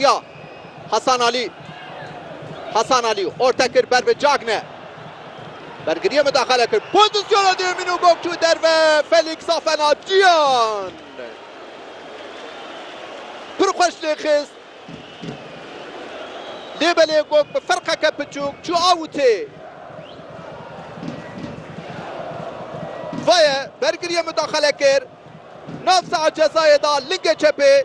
Ya Hasan Alî. Hasan Alî orte kir ber bi Cagne. Bergiriyê mudaxale kir. Pozîsyona duyemîn û gog çû derve Felîks Afenacyan pir xweş lê xist. Lê belê gog bi ferqeke piçûk çû awutê. Vaye bergiriyê mudaxale kir. Nav saha cezayê da lingê çepê.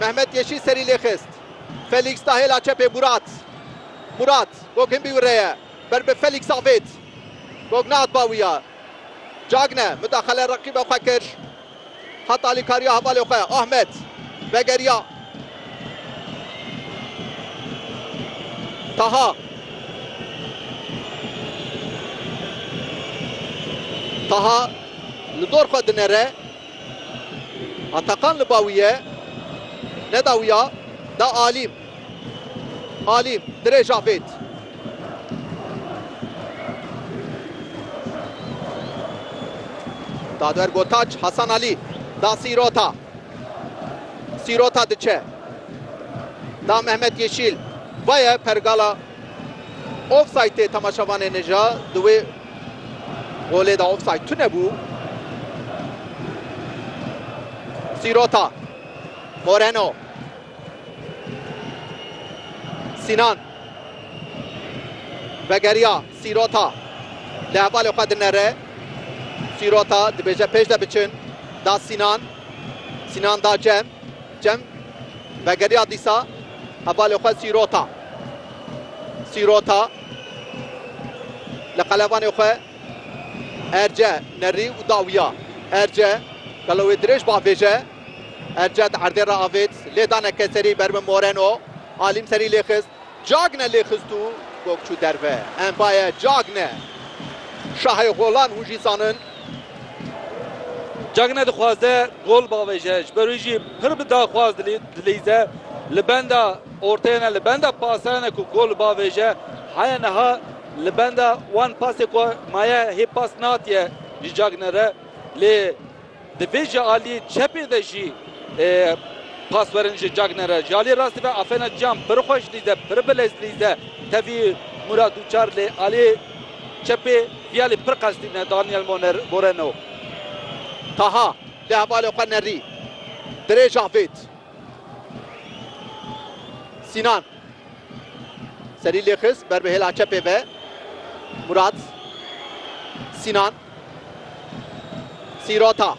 Mehmet Yeşîl serî lê xist. Felîks da hêla çepê Murat. Murat, Gog hin bî wire ye. Ber bi Felîks avêt. Gog nehat ba wî ya. Cagne, mudaxale reqîba xwe kir. Heta alîkariya hevalê xwe. Ahmet, vegeriya. Taha. Taha, li dor xwe dinere. Atakan li ba wî ye, neda wî ya, da Alîm. Alîm, dirêj avêt. Dadwer Gotaç, Hasan Alî, da Sîrota. Sîrota diçe. Da Mehmet Yeşîl. Vaye pergala offside-ê temaşevanên e ja di wê Golê de offside tunebû. Sîrota. Moreno. Sinan. Vegeriya Sîrota. Li hevalê xwe dinere. Sîrota dibêje pêş de biçin. Da Sinan. Sinan da Cem. Cem vegeriya dîsa hevalê xwe Sîrota. Sîrota. Li qelebanê xwe Erce nerî û da wiya. Erce gelo wê dirêj bavêje. Erce di erdê re avêt. Lê da neke serî ber bi Moreno. Alîm serî lê xist. Cagne lê xist û gog çû derve. Mbaye, Cagne. Şahê golan hûn jî zanin. Cagne dixwaze gol bavêje. Ji ber wî jî pir bi daxwaz dileyîze. Li benda. Orteyene li benda pasayene ku kol bavêje heye niha li benda wan pasê ku maye hê pas natiye jî cagine re lê di vê ji aliyê çepê de jî pas werin ji cagine re. Ji aliyê rastî ve afêna cam pir xweş lîze pir bilez lîze tevî Mûrat Uçar lê aliyê çepê viyalî pir qels tîne Daniel Moreno. Taha lê hevalê xwe nerî dirêj avêt Sînan serî lê xist ber bi hêla çepê ve. Murat Sînan Sîrota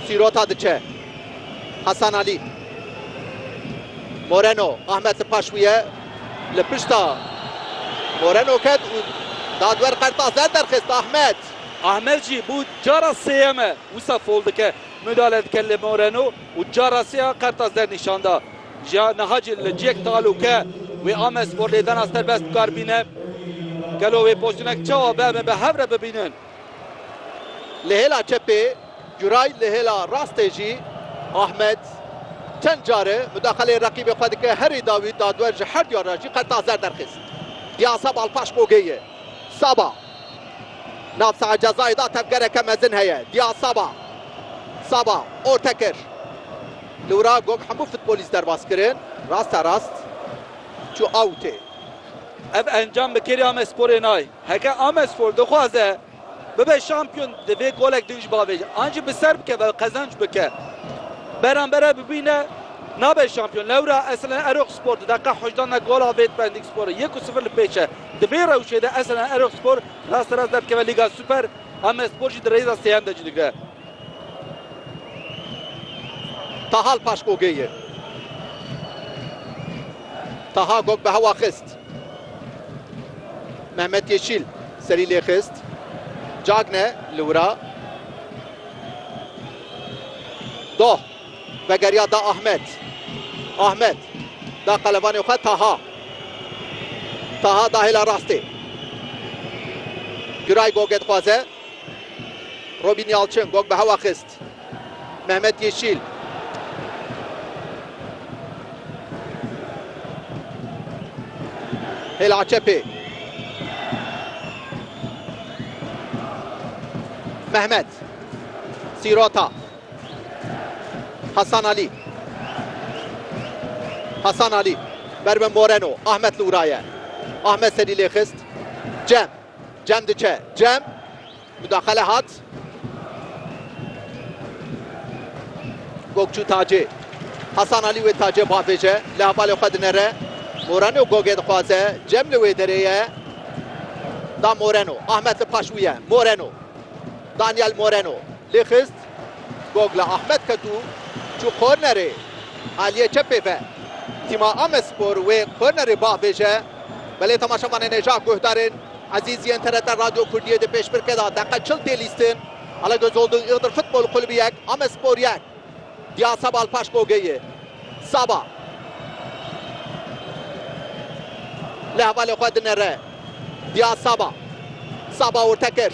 Sîrota diçe Hasan Alî Moreno Ahmet li paş wî ye li pişta Moreno ket û dadwer qerta zer derxist Ahmet Ahmet jî bû cara sêyeme wisa fol dike Midalet Kelle Moreno û cara sê a qertas dernîşan da. Jîya niha jî li ciyek talûke wê ame sporlêdana serbest bikar bîne. Gelo wê postûnek çawa bi em bi hev re bibînin? Li hêla çepê Guray li hêla rastê jî Ahmed çend care mudaxeleyê reqîbê xwe dike herî dawî dadwer ji her diyar re jî qertas zer derxist. Diyasa Balpaş Bogê ye. Saba. Nav saha cezayê de tevgereke mezin heye. Diyar Saba. Saba orte kir. Li wir a gog hemû futbolîst derbas kirin. Raste rast çû awûtê. Ev encam bi kêrî Amesporê nayê. Heke Amespor dixwaze bibe şampiyon divê golek din ji bavê jî an jî bi ser bikeve qezenc bike. Berambere bibîne nabe şampiyon. Lewra eslen Erokspor di deqîqa hejdan de gola Vêt Pendîksporê yek û sifir li pêş e. Di vê rewşê de Esenel Erogspor rasterast derdikeve Lîga Super, Amedspor jî di rêza sêyem de cî digire. Taha li paş Gogê ye. Taha Gog bi hewa xist. Mehmet Yeşîl serî lê xist. Cagne li wira. Doh. Vegeriya da Ahmet. Ahmet da qelebanê xwe Taha. Taha da hêla rastê. Giray Gogê dixwaze. Robîn Yalçin Gog bi hewa xist. Mehmet Yeşîl. Hêla çepê. Mehmet. Sîrota. Hasan Alî. Hasan Alî ber bi Moreno. Ahmet li wira ye. Ahmet serî lê xist. Cem. Cem diçe. Cem. Mudaxele hat. Gokçû Tacê. Hasan Alî wê Tacê bavêje. Li hevalê xwe dinere. Moreno Gogê dixwaze. Cem li wê derê ye. Da Moreno. Ahmet li paş wî ye. Moreno. Daniel Moreno. Lê xist gogla Ahmet ket û çû kornerê aliyê çepê ve. Tîma Amedspor wê kornerê bah bêje, belê temaşevanên ê jah guhdarên Ezîzî yên TRT Radyo Kurdiyê dê pêşbirke da. Deqe çil tê lîstin. Alagözoldun Iğdır Futbol Kulübü yek, Amedspor yek. Ya Sebal paş Bogeyê. Saba li hevalê xwe dinere. Ya Saba. Saba orte kir.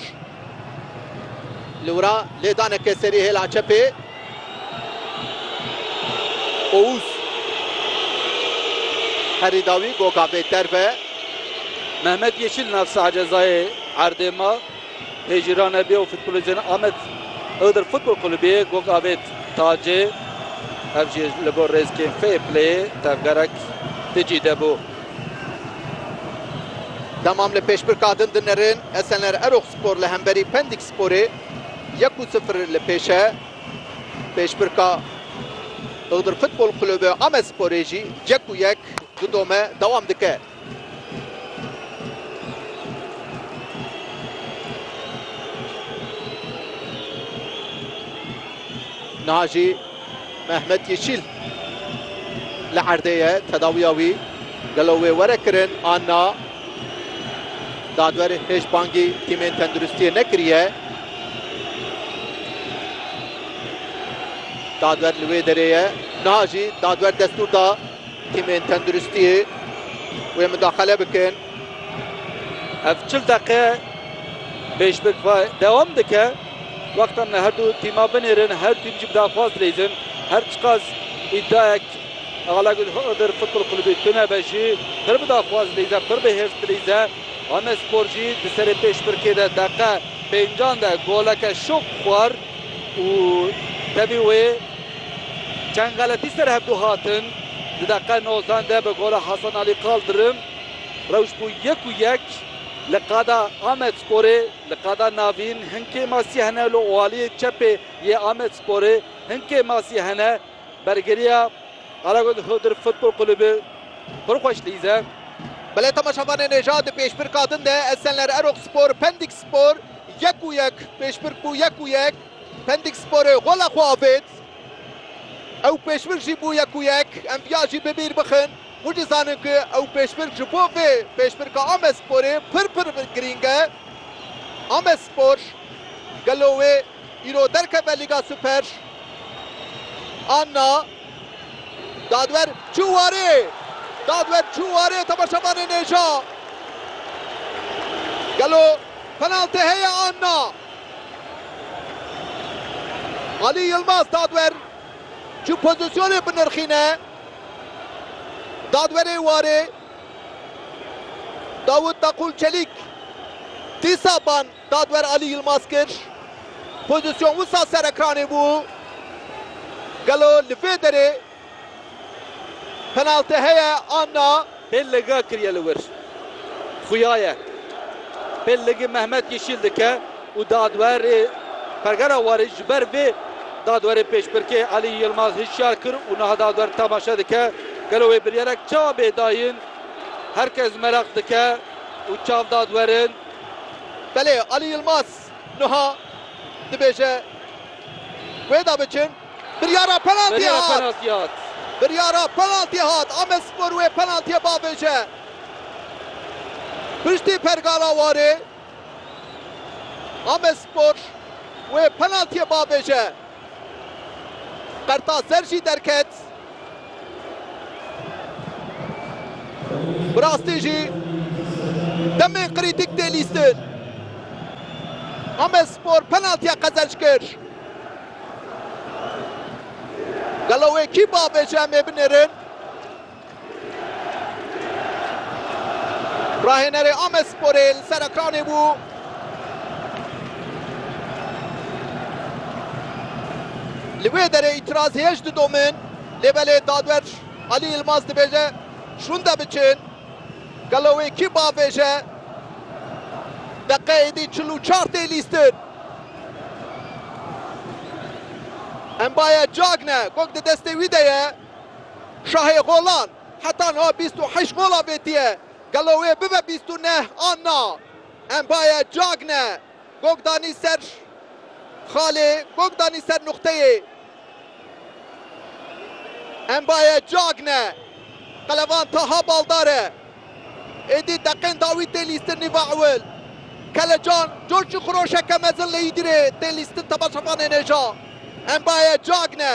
Li wira lêdaneke serî hêla çepê. Ouz. Herî dawî goga vê derve. Mehmet Yeşil navsa cezayê erdê ma. Lê jî ra nebî ew futbolîstên Amed Iğdır Futbol Kulübî gog avêt Tacê. Ev jî li gor rêzkên Fair Playê tevgerek ti cî de bû. Demam li pêşbirka din dinerin Esenler Eroxspor li hemberî Pendik Sporê yek û sifir li pêş e. Pêşbirka Iğdır Futbol Kulübî Amedsporê jî yek û yek di dome dewam dike. Niha jî Mehmet Yeşîl li erdê ye tedawiya wî gelo wê were kirin an na? Dadwer hêj bangî tîmên tenduristiyê nekiriye. Dadwer li wê derê ye. Niha jî dadwer destûr da Tîmên tenduristiyê wê mudaxele bikin. Ev çil deqe pêşbik ve dewam dike. Wexta min e her du tîma binêrin, her tîm jî bi daxwaz dileyzin. Her çiqas îdiayek Alagül Iğdır Futbol Kulübü tunebe jî pir bi daxwaz dileyze, pir bi hêrs dileyze. Amedspor jî di serê pêşbirkê de deqe pêncan de goleke şop xwar. Û tevî wê çend xeletî ser hev du hatin. Di deqe nozdan de bi gola Hasan Alî Kaldirim rewş bû yek û yek li qada Amedsporê. Li qada navîn hin kêmasî hene li aliyê çepê yê Amedsporê hin kêmasî hene. Bergeriya Karagöz Hıdır Futbol Kulübü pir xweş lîz e. Belê temaşavanê nêja di pêşbirka din de Esenler Erokspor, Pendikspor, Yek û yek Pêşbirk bû yek û yek Pendiksporê gola xwe avêt. Ew pêşbirk jî bû yek û yek Em viya jî bi bîr bixin û dizanin ku ew pêşbirk ji bo vê pêşbirka Amedsporê pir pir girîng e. Amedspor gelo wê îro derkeve Lîga Super an na? Dadwer çû warê! Dadwer çû warê temaşevanê nêja. Gelo penaltê heye an na? Alî Yilmaz dadwer çû pozîsyonê binirxîne. Dadwerê warê Dawût Daqûl Çelîk dîsa ban. Dadwer Alî Yilmaz kir. Pozîsyon wisa ser ekranê bû. Gelo li vê derê penaltî heye an na? Pêl liga kiriye li wir. Xuya ye. Pêl ligî Mehmet Yeşîl dike û dadwerê Pergera Warê ji ber vê dadwerê pêşbirkê Alî Yilmaz hişyar kir û niha dadwer temaşe dike. Gelo wê biryarek çawa bê dayîn? Her kes meraq dike û çav dadwerin. Belê Alî Yilmaz nuha dibêje wê de biçin. Biryara penaltiyê hat. Biryara penaltiyê hat. Amedspor wê penaltiyê bavêje piştî pergala warê. Amedspor wê penaltiyê bavêje. Qertaser jî derket. Bi rastî jî demên krîtîk tê lîstin. Amedspor penaltiya qezenc kir. Gelo wê kî biavêje em ê binêrin? Rahênerê Amedsporê li ser ekranê bû. Li wê derê îtiraz hêj didomin lê belê dadwer Alî Yilmaz dibêje şûnde biçin. Gelo wê kî bavêje? Deqeyê dî çil û çar tê lîstin. Embaye Cagne gog di destê wî de ye. Şahê golan heta niha bîst û heşt golan vêtiye, gelo wê bibe bîst û neh an na? Empaye Cagne gog danî ser xalê, gog danî ser nuqteyê. Empaye Cagne, qelevan Taha Baldar e. Êdî deqên dawî tê lîstin nîva ewil. Kelecan coşî xiroşeke mezin li Îdirê tê lîstin temaşevanê nêja. Empaye Cagne.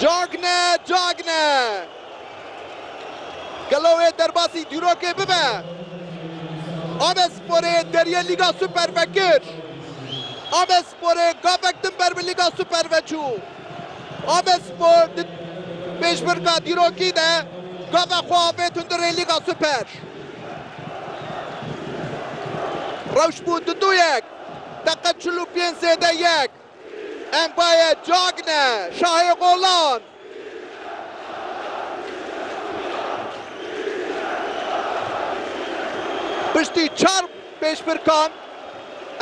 Cagne! Cagne! Gelo wê derbasî dîrokê bibe? Abesporê deriyê Lîga Super vekir. Abesporê gavek din ber bi Lîga Super ve çû. Abespor di pêşbirka dîrokî de gava xwe avêt hundirê Lîga Super. Rewş bû du du yek. Deqe çil û pênc zêde yek. Empaye Cagne, şahê qolan. Piştî çar pêşbirkan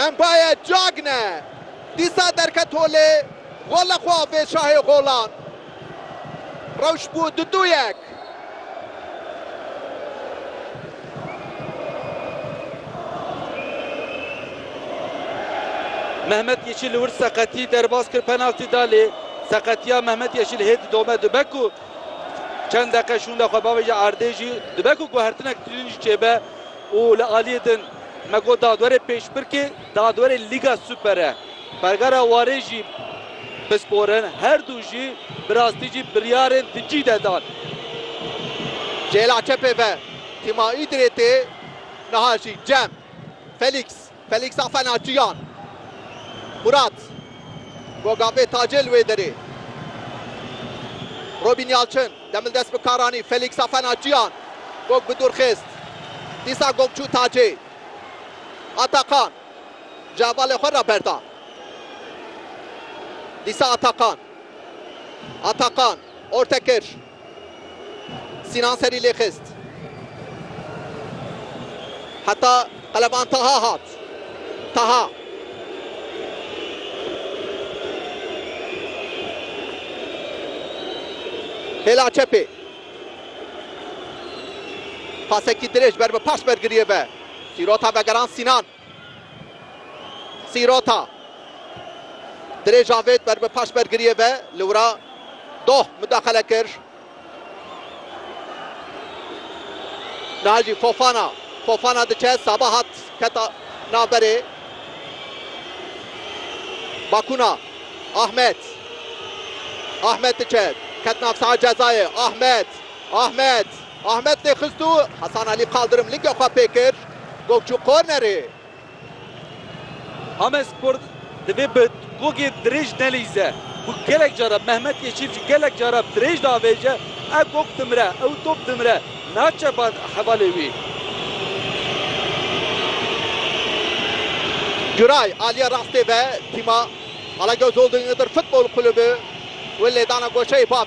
Empaye Cagne dîsa derket holê, gola xwe avêt şahê qolan. Rewş bû du du yek. Mehmet Yeşil wir seqetî derbas kir penaltî da lê seqetiya Mehmet Yeşil hê didome dibe ku çend deqe şûnde xwe bavêje erdê jî dibe ku guhertinek tînin jî çêbe û li aliyê din me got dadwerê pêşbirkê Dagdwerê Lîga Superê Pergara Warê jî pisporin her du jî bi rastî jî biryarên di cî de dan. Cêla çepê ve tîma Îdirê tê niha jî Cem, Felîks, Felîksa fena Ciyan, Murat, Gogavê Tacê li wê derê, Robîn Yalçin, Demil dest bi kar anî, Felîksa fena Ciyan, Gog bi dûr xist, dîsa Gog çû Tacê. Atakan çavalê xwe raberda. Dîsa Atakan. Atakan orte kir. Sînan serî lê xist. Heta qeleban Taha hat. Taha. Hêla çepê. Pasekî dirêj ber bi paş bergiriyê ve. Sîrota vegerand Sînan. Sîrota. Dirêj avêt ber bi paş bergiriyê ve. Li wira Doh mudaxele kir. Niha jî Fofana. Fofana diçe Saba hat. Keta navberê Bakuna Ahmet Ahmet diçet ket nav saha cezayê Ahmet Ahmet Ahmet lê xistû Hasan Elî qaldirim lingê xwe pê kir gol çû kornerê. Amedspor. Divê bi gogê dirêj nelîze ku gelek caran Mehmet Yeşîl jî gelek caran dirêj diavêje, ev gog dimire, ew top dimire, naçe ba hevalê wî. Güray, aliyê rastê ve tîma Alagöz Holding Iğdır Futbol Kulübü wê lêdana goşeyê bavê.